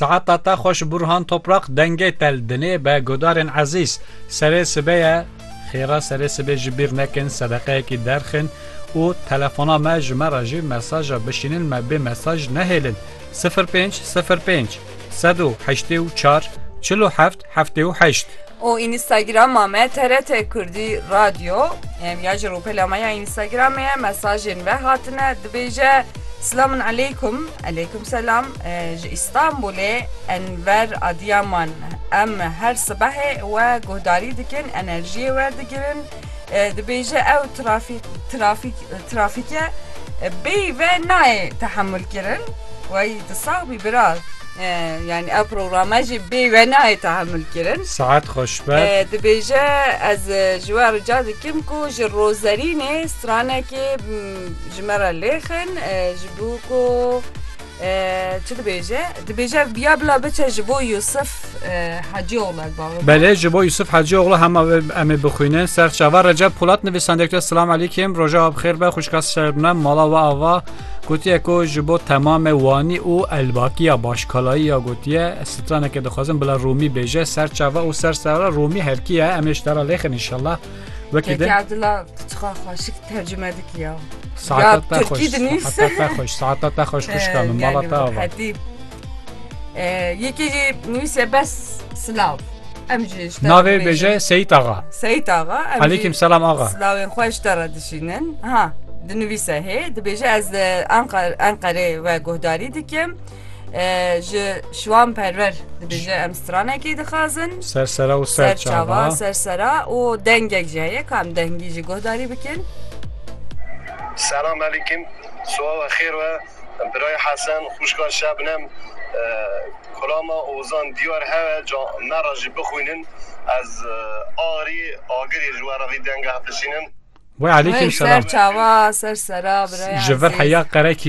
Saeta te xweş Burhan Toprak dengê te li dinê be guhdarên ezîz serê sibê ye xêra serê sibê ji bîr nekin sedeqeyekî derxin û telefona me ji me re jî mesaja bişînin me bê mesaj nehêlin sifir pênc sifir pênc sed û heştê û çar çil û heft heftê û heşt. û Înîstagrama me TRT Kurdî Radyo em ya ji rûpela me ya Înîstagramê ye mesajên ve hatine dibêje Silamun Eleykum Eleykum Selam ji Îstanbulê Enver Adiyaman em her sibehê we guhdarî dikin enerjiyê werdigirin Dibêje ew trafîke bêyî ve nayê tehemul kirin wey tu sax bî bira yani ev programa jî bê ve nayê tahammül kirin saet xweş be dibêje ez ji we rica dikim ku ji rozerînê stranekê ji me re lêxin ji bo ku Çi dibêje? Dibêje ya bila biçe ji bo Yusuf Hacîoğlu ev bavê. Belê ji bo Yusuf Hacîoğlu hema em ê bixwînin ser çava Recep Polat nivîsandekte Silam Elîkêm roja ev xêr be xwişka serbne mala we ava gotiye ku ji bo temame wanî û elbakiya başkalayî ya gotiye straneke dixwazin bila Rûmî bêje ser çava û ser sera Rûmî herkiye em ê ji te re lêxin inşallah. Wekî de Keke dila çiqa xweşik tercüme dikiya. Saeta Ya, te Türkî xweş. dinîs. Saeta te xweş. Saeta te xweş xuşka min. Mala te ava. Hetîb. Yekê jî nivîse bes silav. Em jî ji te re Navê bibêjin. bêje Seyit Axa. Seyit axa. em jî Alîkim selam axa. Silavên xwe ji te re dişînin. Ha, dinivîse hê, dibêje ez li Enqer- Enqerê we guhdarî dikim. ji şiwan perwer dibêje em stranekê dixazin ser sera û ser çava ser sera û dengek jî heye kam dengî ji guhdarî bikin Selam alîkim Suawa xêr we Biray Hesen xuşka şebnem Kulama Ozan diyar hewe ca me ra jî bixwînin ez arî agirê ji we ra vî denge hepişînin Wê alîkim selam Ser çava ser sera Biray Ji vir heya qerekî